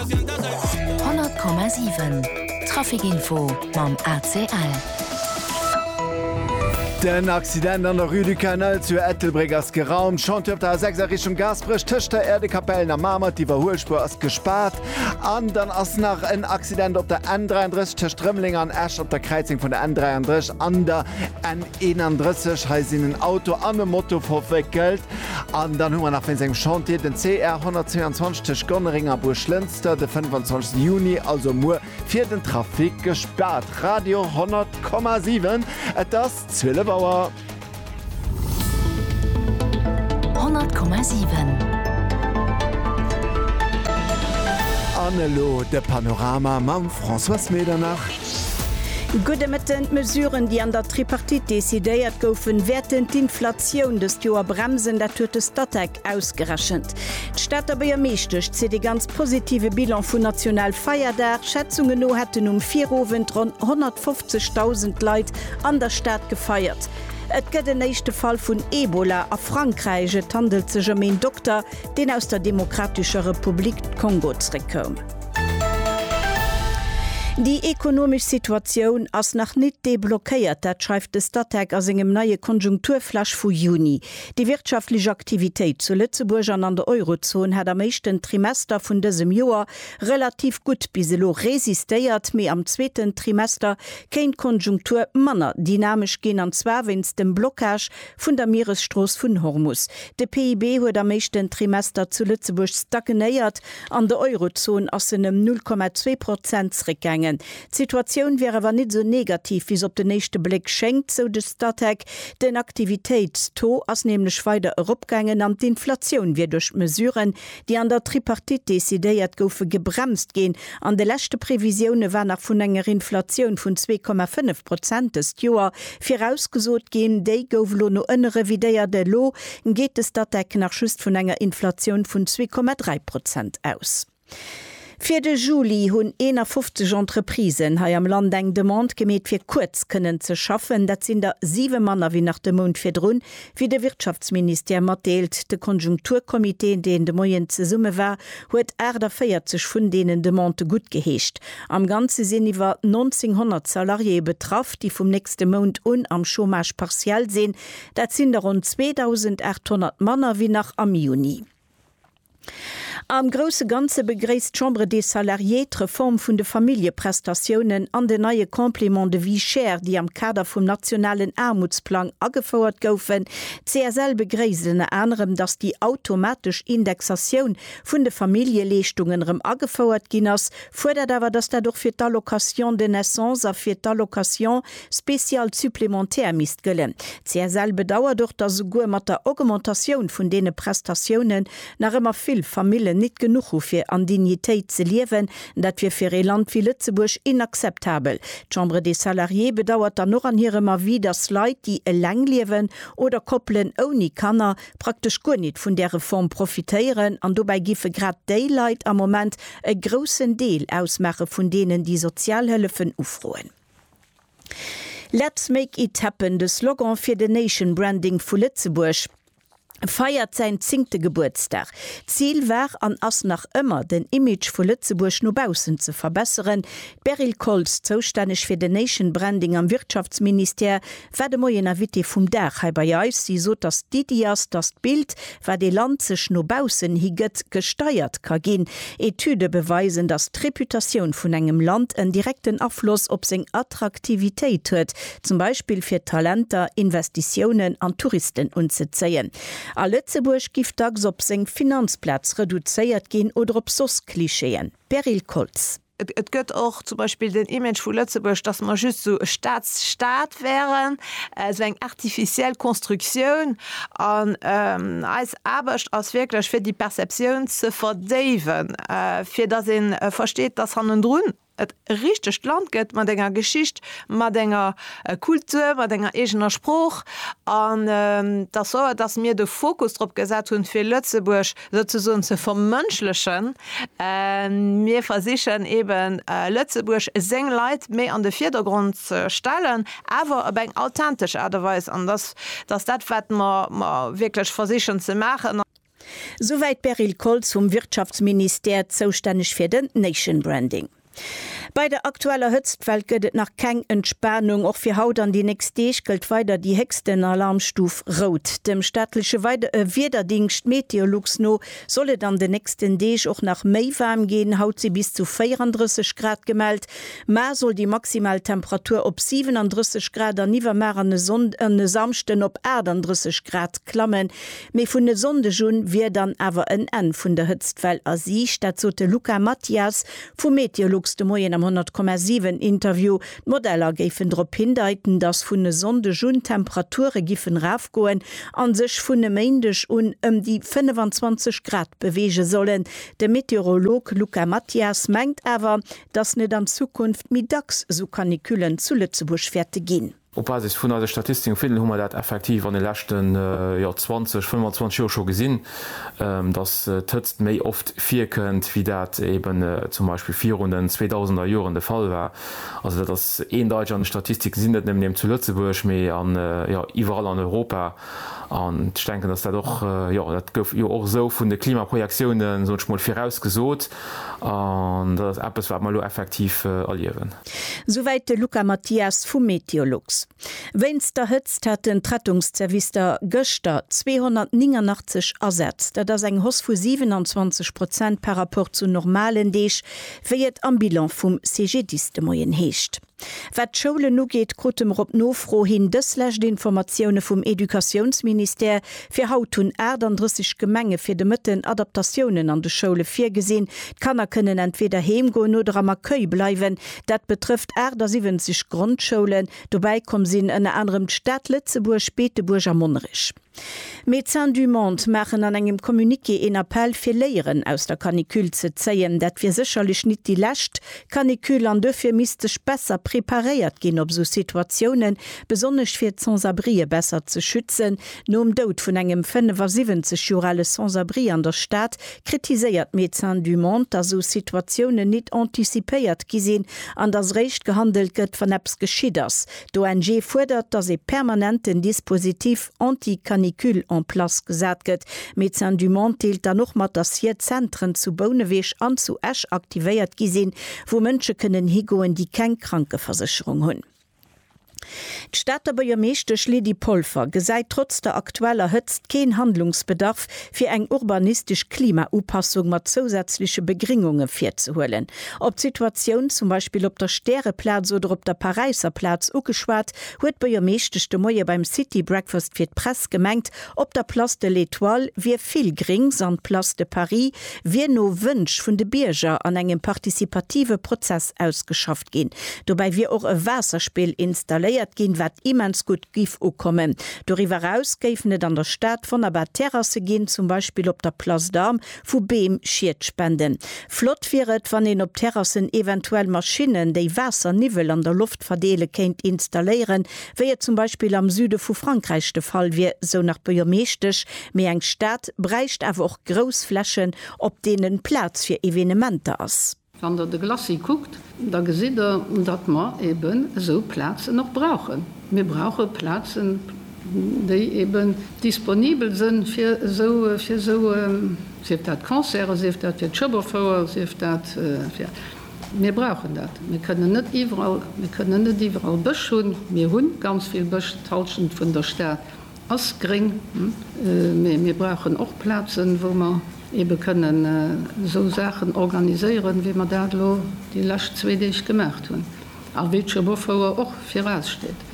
100,7 Trafic Info mam ACL. Den Accident an der Rue du Canal zu Ettelbréck ass geraumt. Chantier op der A6 a Richtung Gaasperech tëscht der Äerdekapellen a Mamer. D'Iwwerhuelspuer ass gespaart. An dann ass nach en Accident op der N33 tëscht Rëmeleng an Esch op der Kräizung vun der N33 an der N31. Hei sinn en Auto an e Moto verwéckelt. An dann hu mer nach wéinst engem Chantier den CR 122 tëscht Gonnereng a Buerglënster de 25 Juni, also muer, fir den Trafic gespaart. Radio 100,7, et ass 12 Auer. 100,7. An elo de Panorama mam Françoise Medernach. Gudde Mëtten. D'Mesuren, déi an der Tripartite decidéiert goufen, wäerten d'Inflatioun dëst Joer bremsen. Dat huet de Statec ausgerechent. D'Stater Buergermeeschtesch zitt ee ganz positive Bilan vun Nationalfeierdag. Schätzungen no hätten um Virowend ronn 150.000 Leit an der Stad gefeiert. Et gëtt en éischte Fall vun Ebola a Frankräich. Et handelt sech ëm een Dokter, deen aus der Demokratescher Republik Kongo zeréckkoum. Déi ekonomesch Situatioun ass nach nit deblockéiert, dat schreift de Statec a sengem neie Konjunkturflash vu Juni. Déi wirtschaftlech Aktivitéit zu Lëtzebuerg an an der Eurozon hat am éischten Trimester vun dësem Joer relativ gutt bis elo resistéiert, mee am zweeten Trimester kéint d'Konjunktur manner dynamesch ginn, an zwar wéinst dem Blockage Vun der Mieresstrooss vun Hormus. De PIB huet am éischten Trimester zu Lëtzebuerg stagnéiert, an der Eurozon ass en ëm 0,2 Prozent zréckgaangen. D'Situatioun wär awer nit esou negativ wéi se op den éischte Bléck schéngt, sou de Statec. Den Aktivitéitstaux ass nämlech weider eropgaangen an d'Inflatioun wier duerch d'Mesuren, déi an der Tripartite decidéiert goufe, gebremst ginn. An de leschte Previsioune war nach vun enger Inflatioun vun zwee Komma fënnef Prozent dëst Joer virausgesot ginn. Déi gouf elo no ënne revidéiert. Elo geet de Statec nach just vun enger Inflatioun vun zwee Komma dräi Prozent aus. Fir de Juli hunn 51 Entreprisen hei am Land eng Demande gemeet fir kuerz kënnen ze schaffen. Dat sinn der siwe manner wéi nach de Mount virdrun, wéi de Wirtschaftsministère matdeelt. De Konjunkturcomité, deen de Moien zesumme war, huet 48 vun deenen Demandë guttgeheescht. Am Ganze sinn iwwer 1900 Salariéeë betraff, déi vum nächste Mount un am Chômage partiel sinn. Dat sinn der ronn 2.800 manner wéi nach am Juni. Am grousse Ganze begréisst d'Chambre des Salariés d'Reform vun de Familljeprestatiounen an den neie Complément de vie chère, déi am Kader vum nationalen Aarmutsplang agefouert goufen. D'CSL begréisst ënner anerem, datt déi automatesch Indexatioun vun de Familljeleeschtungen erëm agefouert ginn ass, fuerdert awer, datt dat och fir d'Allocation de naissance a fir d'Allocation spéciale supplémentaire misst gëllen. D'CSL bedauert och, dass esouguer mat der Augmentatioun vun deene Prestatiounen nach ëmmer vill Famillen nit genuch hu fir an Dignitéit ze liewen. Dat wier fir ee Land wéi Lëtzebuerg inakzeptabel. D'Chambre des Salariés bedauert dann och an hirem Avis, dass Leit, déi eleng liewen, oder Koppelen ouni Kanner, praktesch guer nit vun där Reform profitéieren. An dobäi giffe grad déi Leit am Moment e groussen Deel ausmaache vun deenen, déi Sozialhëllefen ufroen. Let's make it happen, de Slogan fir den Nation Branding vu Lëtzebuerg, feiert säin zéngte Gebuertsdag. D'Zil war an ass nach ëmmer, den Image vu Lëtzebuerg no baussen ze verbesseren. D'Beryl Koltz, zoustänneg fir den Nation Branding am Wirtschaftsministère, War de Moien Invité vum Dag hei bei eis. Si sot, datt d'Iddi ass, datt d'Bild, wat ee Land sech no baussen hi gëtt, gesteiert ka ginn. Etüde beweisen, datt d'Reputatioun vun engem Land en direkten Afloss op seng Attraktivitéit huet, zum Beispill fir Talenter, Investitiounen an Touristen unzezéien. A Lëtzebuerg giff dacks op seng Finanzplaz reduzéiert ginn oder op soss Klischeeën. Beryl Koltz. Et gëtt och zum Beispill den Image vu Lëtzebuerg, dass mer just esou e Staatsstaat wären, esou eng artificiell Konstruktioun. An eis Aarbecht ass wierklech, fir déi Perceptioun ze verdéiwen, fir dass ee versteet, dass hannendrun e richtegt Land gëtt mat enger Geschicht, mat enger Kultur, mat enger eegener Sprooch. An dass, soit dass mir de Fokus drop gesat hunn, fir Lëtzebuerg Souzesoen ze vermënschlechen. Mir versichen eben Lëtzebuerg, seng Leit méi an de Virdergrond ze stellen, awer op eng authentesch Aart a Weis. An dass ass dat, wat mer wierklech versichen ze maachen. Souwäit d'Beryl Koltz vum Wirtschaftsministère, zoustänneg fir den Nation Branding. Bei der aktueller Hëtztwell gëtt et nach keng Entspanung. Och fir haut an déi nächst Deeg gëllt weider déi héchsten Alarmstuf Rout. Dem staatleche Wiederdingscht Meteolux no soll et an den nächsten Deeg och nach méi waarm ginn. Haut si bis zu 34 Grad gemellt. Mar soll déi maximal Temperatur op 37 Grad an iwwermar an e Samschden op 38 Grad klammen. Mee vun e Sonndeg un wier dann awer en Enn vun der Hëtztwell a Siicht. Dat sot de Luca Mathias Vu Meteolux de Moien am 100,7 Interview. D'Modeller géifen drop hindeiten, dass vun e Sonndeg un d'Temperature giffen erafgoen an sech vun e Méindeg un ëm déi 25 Grad beweege sollen. De Meteorolog Luca Mathias mengt awer, dass net an Zukunft méi dacks sou Canicullen zu Lëtzebuerg wäerte ginn. Op Basis vun eise Statistiken vun hu mer dat effektiv an de leschten 20, 25 Joer scho gesinn, dass d'Hëtzt méi oft virkënnt, wéi dat eeben zum Beispill virun den 2000er Joren de Fall war. Also dat ass eendeiteg an de Statistiken, si net nëmmen eben zu Lëtzebuerg, mee iwwerall an Europa. An ech denken, dass dat och, dat gouf jo och esou vun de Klimaprojektiounen, soen ech mol, virausgesot. An dat ass eppes, wat mer elo effektiv erliewen. Souwäit de Luca Mathias vu Meteolux. Wéinst der Hëtzt haten d'Rettungszerwister gëschter 289 Asätz. Dat ass eng Hoss vu 27 Prozent par rapport zu normalen Deeg, wéi et am Bilan vum CGDIS de Moien heescht. Wat d'Schoulen ugeet, krute mer op Nofro hin dëslescht Informatioune vum Educatiounsministère. Fir haut hunn 38 Gemenge fir de Mëtten Adaptatiounen an de Schoule virgesinn. D'Kanner kënnen entweeder heem goen oder am Accueil bleiwen. Dat betrëfft 78 Grondschoulen. Dobäi komm sinn ënner anerem d'Stad Lëtzebuerg, Beetebuerg a Monnerech. Médecins du Monde maachen an engem Communiqué een Appell fir Léieren aus der Canicule ze zéien. Dat wier sécherlech nit déi lescht Canicule an duerfir misst sech besser preparéiert ginn op esou Situatiounen, besonnesch fir d'Sans-abrien besser ze schützen. Nom Doud vun engem 75 Joer ale Sans-abri an der Stad kritiséiert Médecins du Monde, datt esou Situatiounen nit anticipéiert gi sinn an datt eréischt gehandelt gëtt, wann eppes geschitt ass. D'ONG fuerdert, datt ee permanenten Dispositif anti-canicule en place gesat gëtt. Médecins du Monde deelt dann och mat, datt hier Zentren zu Bouneweg an zu Esch aktivéiert gi sinn, wou Mënsche kënnen higoen, déi keng Krankeversécherung hunn. D'Stater Buergermeeschtesch Lydie Polfer gesäit trotz der aktueller Hëtzt keen Handlungsbedarf, fir eng urbanistesch Klimaupassung mat zousätzleche Begringunge virzehuelen. Op d'Situatioun zum Beispill op der Stäreplaz oder op der Paräisser Plaz ugeschwat, huet d'Buergermeeschtesch de Moie beim City Breakfast fir d'Press gemengt, op der Place de l'Etoile wier vill Gréngs an d'Place de Paris wier no Wënsch vun de Bierger an engem participative Prozess ausgeschafft. gestoppt ginn. Dobäi wier och e Waasserspill installéiert ginn, wat immens gutt giff ukommen. Doriwwer eraus géifen et an der Stad wonnerbar Terrasse ginn, zum Beispill op der Place d'Armes, wou Beem Schied spenden. Flott wier et, wann een op Terrassen eventuell Maschinnen, déi Waasserniwwel an der Loft verdeele kéint installéieren, wéi et zum Beispill am Süde vu Frankräich de Fall wier, sou nach d'Buergermeeschtesch. Mee eng Stad bräicht awer och grouss Flächen, op deenen Plaz fir Evenementer ass. Wann Der de Glacis kuckt, da gesitt Der, datt mer eeben esou Plazen och brauchen. Mir brauche Plazen, déi eeben disponibel si fir esou, sief dat Concerte, sief dat fir d'Schëbberfouer, sief dat fir. Mir brauchen dat. Mir kënnen net iwwerall, mir kënnen net iwwerall Bësch hunn. Mir hu ganz vill Bësch d'Hallschent vun der Stad. Ass gréng, mee mir brauchen och Plazen, wou mer eebe kënnen esou Saachen organiséieren, wéi mer dat elo déi lescht zwee Deeg gemaacht hunn a wéi d'Schoboffouer och viraussteet.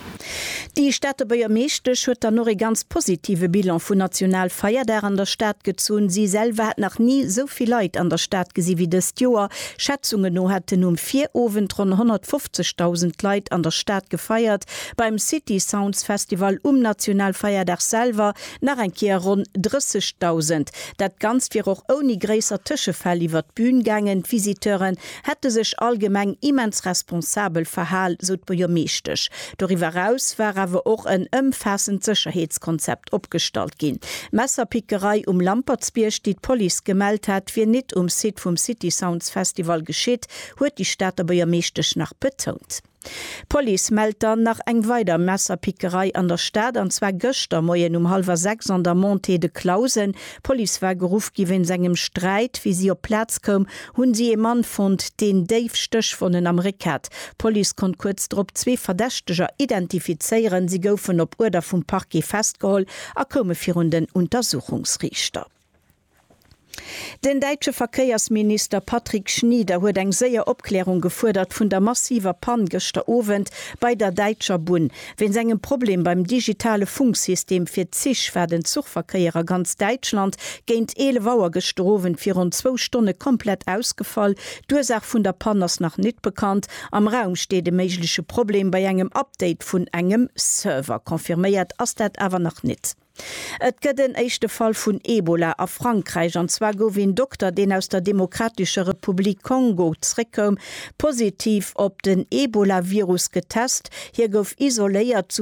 Déi Stater Buergermeeschtesch huet dann och ee ganz positive Bilan vun National Feierdag an der Stad gezunn. Si selwer hätt nach ni esou vill Leit an der Stad gesi wéi dëst Joer. Schätzungen no hätten um Virowend ronn 150.000 Leit an der Stad gefeiert. Beim City Sounds Festival um Nationalfeierdag selwer nach eng Kéier ronn 30.000. Dat Ganzt wier och ouni gréisser Tëschefäll iwwert d'Bühn gaangen. D'Visiteuren hätte sech allgemeng immens responsabel verhal, sou d'Buergermeeschtesch. Doriwwer eraus war awer och en ëmfaassend Sécherheetskonzept opgestallt ginn. D'Messerpickerei um Lampertsbierg, déi d'Police gemellt hat, wier nit um Site vum City Sounds Festival geschitt, huet déi Stater Buergermeeschtesch nach betount. D'Police mellt dann nach eng weider Messerpickerei an der Stad, an zwar gëschter Moien um hallwer 6 an der Montée de Clausen. D'Police war geruff gi wéinst engem Sträit. Wéi si op d'Plaz koum, hunn si ee Mann fonnt, deen déif Stéchwonnen am Réck hat. D'Police konnt kuerz drop zwee Verdächteger identifizéieren. Si goufen op Uerder vum Parquet festgeholl a koume virun den Untersuchungsriichter. Den däitsche Verkéiersminister Patrick Schnieder huet eng séier Opklärung gefuerdert vun der massiver Pann gëschter Owend bei der däitscher Bunn. Wéinst engem Problem beim digitale Funksystem fir d'Zich war den Zuchverkéier a ganz Däitschland géint 11 Auer gëschter Owend fir ronn zwou Stonne komplett ausgefall. D'Ursaach vun der Pann ass nach nit bekannt. Am Raum steet e méigleche Problem bei engem Update vun engem Server. Confirméiert ass dat awer nach nit. Et gëtt en éischte Fall vun Ebola a Frankräich, an zwar gouf een Dokter, deen aus der Demokratescher Republik Kongo zeréckkoum, positiv op den Ebolavirus getest. Hie gouf isoléiert.